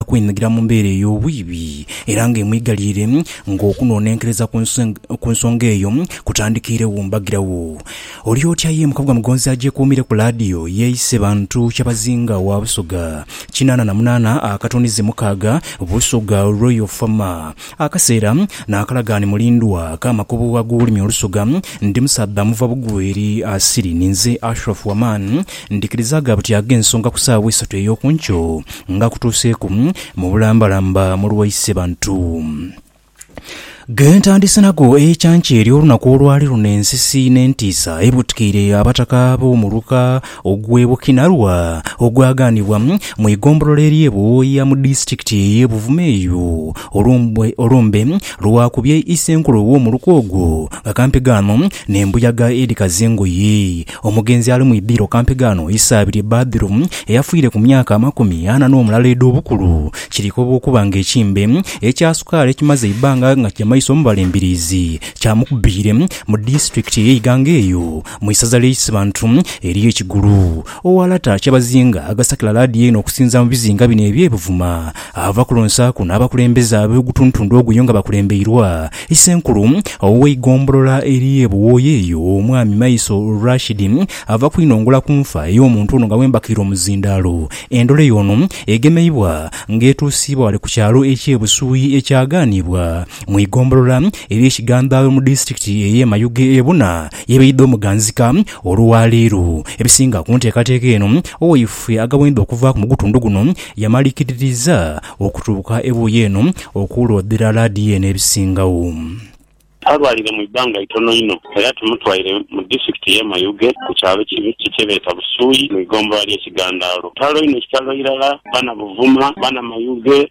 kweinhigira mu mbeera ey'obwibi era nga emwigaliire ng'okunoonenkereza ku nsonga eyo kutandikiiregho mbagiragho. Oli otya ye mukabuga Mugonzi agyekuumire ku laadiyo yeeyise bantu Kyabazinga wa Busoga kinaana na munaana akatonize mukaaga Busoga Royal Farmer Akaseera naakalagaani mulindwa ak'amakubo ag'olulimi olusoga. Ndi musaadha muva bugweri asiri. Ninze Ashraf Waman. Ndhikiriza gha buti ag'ensonga ku saawa eisatu ey'oku nkyo nga kutuuseeku mu bulambalamba mu lwa Isebantu. Ge ntandise nago ekyankya ery'olunaku olwali luno ensisi n'entiisa ebutikaire Abataka b'omu luka Ogw'e Bukinarwa ogwaghanibwa mu igombolola ery'e Buwoya mu disitulikiti ey'e Buvuma eyo, olumbe lwakubye Isenkulu ow'omuluka ogwo nga kampegaano n'embuyaga edhikaza engoye. Omugenzi ali mu idhiro kampegaano Isaabirye Badru eyafiire ku myaka amakumi ana n'omulala edh'obukulu kirikoba okuba nga ekimbe ekya sukaali ekimaze eibbanga nga kigyamaiso mu balemberiizi kyamukubiire mu disitulikiti ey'e Iganga eyo Mu isaza ly'e Isibantu eriyo ekigulu. Owalata Kyabazinga agasakila laadiyo eno okusinza mu bizinga bino eby'e Buvuma. Ava ku lonsa kuno abakulembeze ab'ogutuntundu oguyo nga bakulembeirwa Isenkulu ow'eigombolola ery'e Buwooya eyo, Omwami Maiso Rashid ava kwinongola ku nfa ey'omuntu ono nga bwembakiire omuzindaalo. Endholeyo y'ono egemeibwa nga etuusiibwa wale ku kyalo eky'e Busuuyi ekyagaanibwa mu igombolola ery'e Kigandhaawe mu disitulikiti ey'e Mayuge ebuna Yebaidha omuganzika olwaleero. Ebisinga ku nteekateeka eno owaife agabonedha okuvaaku mu gutundu guno yamalikirirza okutuuka ebuuyi eno okuloodhera laadiyo n'ebisingagho. Talwalire mu ibbanga itono inho era tumutwaire mu disitulikiti y'e Mayuge ku kyalo Kibikki kyebeeta Busuuyi mu igombolola ly'e Kigandaalo. Kitalo inho kitalo irala bana Buvuma, bana Mayuge.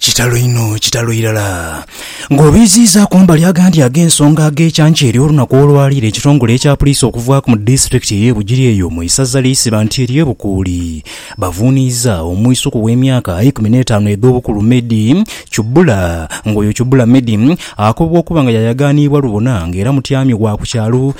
Kitalo inho, kitalo irala! Ng'obiiziiza kumbali agandi ag'ensonga ag'ekyankya ery'olunaku olwaleero, ekitongole ekya puliisi okuvaaku mu disitulikiti ey'e Bugiri eyo mu isaza ly'e Sibanti ery'e Bukuuli bavuuniiza omwisuku w'emyaka eikumi n'etaanu edh'obukulu Medi Chubula ng'oyo Chubula Medi akobwa okuba nga yayagaaniibwa lubona ng'era mutyami wa ku kyalo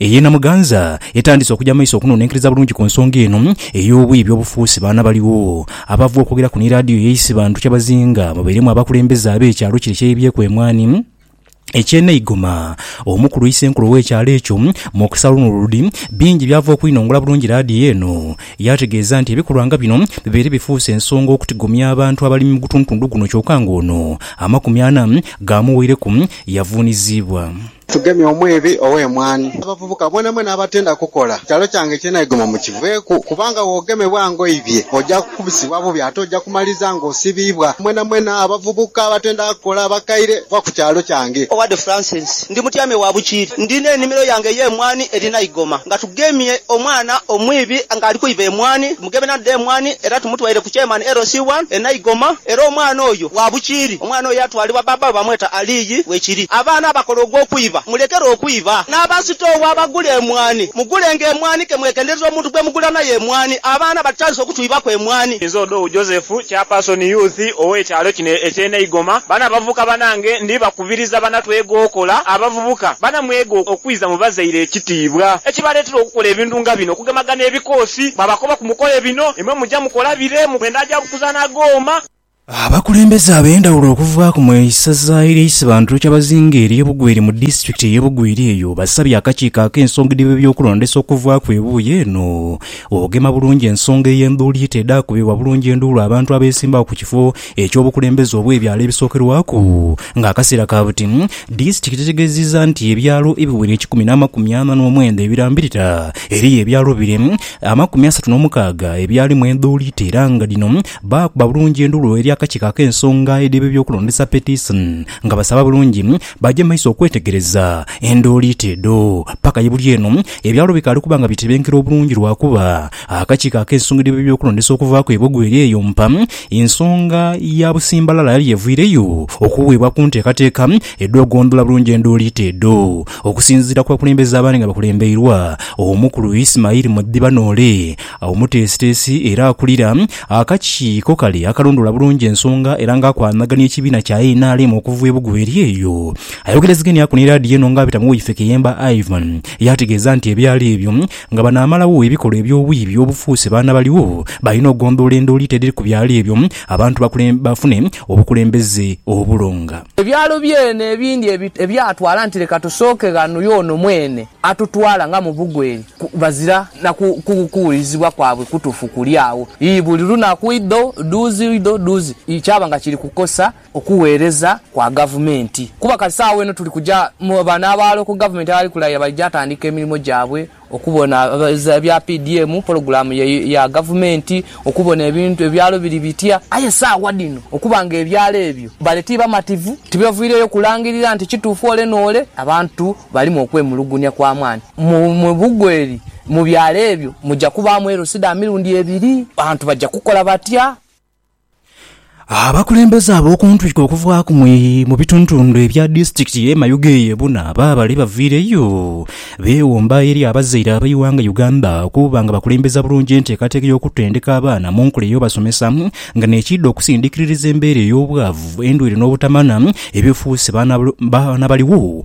Eye Namuganza etandise okuja maiso okunonenkeriza bulungi ku nsonga eno ey'obuyi by'obufuusi baana baligho abava okwogeraku ni laadiyo ye Isibantu kyebazinga babairemu abakulembeze ab'ekyalo kire kyeyebyeku emwani eky'e Neigoma. Omukulu Isenkulu ow'ekyalo ekyo, Mukisa Lunuludi, bingi byava okwinongola bulungi laadiyo eno yaategeeza nti ebikolwa nga bino bibaire bifuuse ensonga okutigomya abantu abalimi mu gutundutundu guno kyoka ng'ono amakumi ana gaamuweireku yavuuniziibwa. Tugemye omwiibi ow'emwaani. Abavubuka, mwenamwena abatenda kukola kyalo kyange kyenaigomwa mukiveeku, kubanga bw'ogemebwa ng'oibye, oja kukubisibwa bubi ate oja kumaliriza ng'osibiibwa. Mwenamwena abavubuka abatenda kukola abakaire, va ku kyalo kyange. Owade Francis, ndi mutyame wa bukiiri. Ndi n'enimiro yange ey'emwaani erina eigoma. Nga tugemye omwana omwiibi ng'ali kwiba emwaani. Mugebe nandha emwani era tumutwaire ku kyemanhi LC one e Naigoma era omwana oyo wa bukiiri. Omwana oyo yatwalibwa bbaabba we bamweta Aliyi we kiri. Abaana abakola ogw'okwiba mulekere okwiba. N'abasitoowa abagula emwani mugulenga emwani ke mwegendereze omuntu gwe mugula naye emwani. Abaana batutandise okutwibaku emwani. Nze Odou Joseph, Chairperson Youth ow'ekyalo kino eky'e Naigoma. Bano abavubuka banange ndi baku. Kubiriza banatwega okola. Abavubuka banamwega okwiza mu bazaire ekitiibwa ekibaleetera okukola ebintu nga bino, okugemaga n'ebikoosi. Bwabakoba ku mukole bino, imwe muja mukola bire mu mwenda gya kuzaana gooma. Abakulembeze ab'endhawulo okuva ku mu isaza erye Isibantu Kyabazinga erye Bugweri mu disitulikiti eye Bugweri eyo basabye akakiiko ak'ensonga edh'ebye by'okulondesa okuvaaku ebuuyi eno okugema bulungi ensonga ey'endhuuliita edha kubibwa bulungi enduulu abantu abesimbagho ku kifo eky'obukulembeze obw'ebyalo ebisookerwaku nga akaseera ka buti, disitiki tetegeezizza nti ebyalo ebiwera ekikumi n'amakumi ana n'omwenda ebirambirira eriyo ebyalo bire amakumi asatu n'omukaaga ebyalimu endhuuli era nga dhino baakuba bulungi enduulu eri akakiiko ak'ensonga edh'ebyokulondesa petition nga basaba bulungi baje mu maiso okwetegereza enduulu edho paka ye buli eno ebyalo bikaali kuba nga bitebenkera obulungi lwakuba Akakiiko akeesungirwa eby'okulondesa okuva ku Ebogo eri eyo mpa ensonga ya busimbalala yali eviireyo okuweebwa ku nteekateeka edh'okugondola bulungi enduuliita edho. Okusinziira ku bakulembeze abaali nga bakulembeirwa Omukulu Ismail Mudhiba Noole, omuteesiteesi era akulira akakiiko kale akalondoola bulungi ensonga era nga akwanagania ekibiina kya nrm okuva Ebogo eri eyo ayogerezegania ku ni laadiyo eno nga abita mu woifeeke y'emba Ivan yaategeeza nti ebyalo ebyo Nga banaamalagho ebikolwa eby'obwiibi obufuuse baana baligho balina okugondhoola endooliito edhiri ku byalo ebyo abantu bafune obukulembeze obulonga. Ebyalo byene ebindi ebyatwala nti leka tusooke ghano y'ono mwene atutwala nga mu bugweri bazira na kuwulirizibwa kwabwe kutuufu kuli agho. Ii Buli lunaku idho dhuuzi idho dhuuzi kyaba nga kiri kukosa okugheereza kwa gavumenti kuba kati saagho eno tuli kuja mu bano aba local government abali kulayira bali ja tandika emirimo gyabwe okubona ebya PDM, pologulaamu ya gavumenti, okubona ebintu ebyalo biri bitya aye saagha dhino okuba nga ebyalo ebyo bale ti bamativu tibavwireyo kulangirira nti kituufu ole n'ole abantu balimu okwemulugunya kwa maani mu bugweri mu byalo ebyo muja kubaamu LCDA mirundi ebiri, bantu baja kukola batya? Abakulembeze ab'oku ntwiko okuvaaku mu bitundhutundhu ebya disitulikiti ye Mayuge ye buna baabale baviireyo beewomba eri abazaire ab'eighanga Uganda okuba nga bakulembeza bulungi enteekateeka y'okutendeka abaana mu nkula ey'obasomesa nga nekiidha okusindikiririza embeera ey'obwavu, endwaire n'obutamanya ebifuuse baana baligho.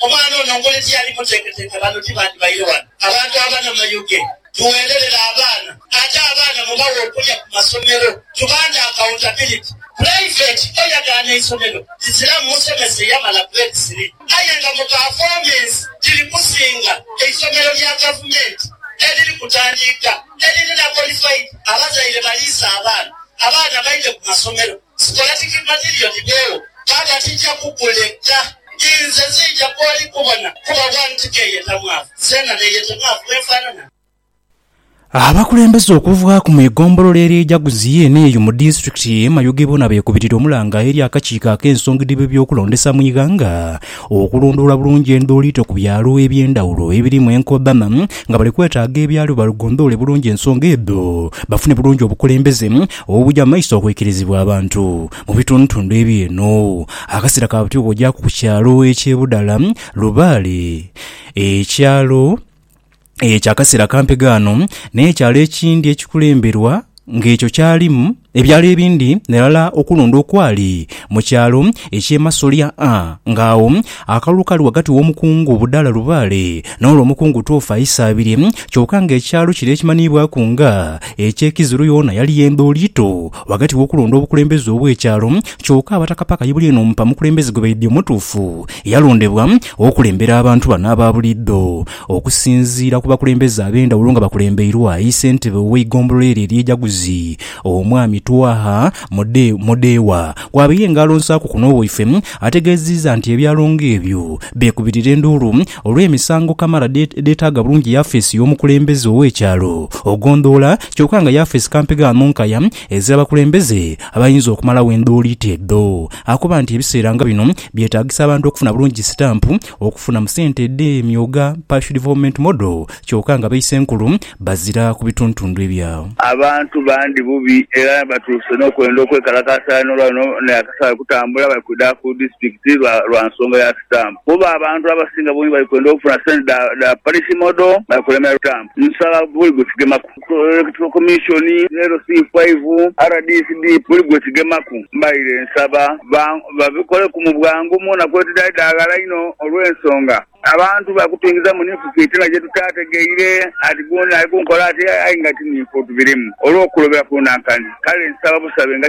Omwana ono ngoli tiyali muteketeke bano tibandibaire wano. Abantu abana Mayuge tuwererera abaana ate abaana mubawe okulya ku masomero tubande accountability. Private oyagaana eisomero liziramu musomesa eyamala grade three aye nga mu performance liri kusinga eisomero lya gavumenti eriri kutandiika eririna qualified abazaire baliise abaana abaana baidhe ku masomero. Scholastic material gidhewo Taata tija kukuleka inze nzija kwoli kubona kuba one ti keyeta mwavu zena neyete mwavu bwenfanana. Abakulembeze okuvaaku mu egombolola erye Jaguzi yeene eyo mu disitulikiti eye Mayuge boona beekubirira omulanga eri akakiiko ak'ensongi dh'ebyokulondesa mu ighanga okulondoola bulungi endooliito ku byalo eby'endhawulo ebirimu enkodhana nga bali kwetaaga ebyalo bagondoole bulungi ensonga edho bafune bulungi obukulembeze Obugya mu maiso okwikirizibwa abantu mu bitundutundu ebyo eno akasera ka buti bwogyaku ku kyalo ekye Budala lubaale, ekyalo ekya kasera kampi gaano n'ekyalo ekindi ekikulemberwa nga ekyo kyalimu ebyalo ebindi nerala okulonda okwali mu kyalo ekye Masolya a nga agho Akalulu kali ghagati w'omukungu Budala Lubaale n'olwo omukungu Twoofa Isaabirye, kyoka nga ekyalo kino ekimanhiibwaku nga eky'e Kiziru yoona yali yendho liito ghagati w'okulonda obukulembeze obw'ekyalo kyoka Abataka paka ye bulyeeno mpa mukulembeze gwe baidhie omutuufu yalondebwa okulembera abantu bano aba buliidho. Okusinziira ku bakulembeze ab'endhawulo nga bakulembeirwa yi Ssentebe ow'eigombolola eryo ery'e Jaguzi, Omwami Twaha Mudeewa, kw'abaire nga alonsaaku kuno waifwe, Ategeziiza nti ebya Longo ebyo byekubirira enduulu olw'emisango kamala edhetaaga bulungi yafeesi y'omukulembeze ow'ekyalo ogondhoola kyoka nga yafeesi kampi gha nonkaya ez'abakulembeze abayinza okumalawo endooliito edho. Akoba nti ebiseera nga bino byetaagisa abantu okufuna bulungi sitampu Okufuna mu sente edhe myuga, Partial Development Model, kyoka nga baisenkulu bazira ku bituntundu ebya. Abantu bandhi bubi era batuuse n'okwenda okwekalakaasa aye n'olwa luno naye akasaaghe kutambula bali kwidha ku disitulikiti lwa lwa nsonga ya sitampu kuba abantu abasinga bungi bali kwenda okufuna sente dha dha Parish Model bali kulemera sitampu. Nsaba buli gwe tugemaku. Electoral Commission, LC five, rdc dii buli gwe kigemaku mbaire nsaba babikoleku mu bwangu mwona kwetudhali daghala inho olw'ensonga abantu bakutuingiza mu ninfu fitina gye tutaategeire ati gundi ali ku nkola ati aye nga ti ninfu tubirimu olw'okulobera ku nankani kale nsaba busabe nga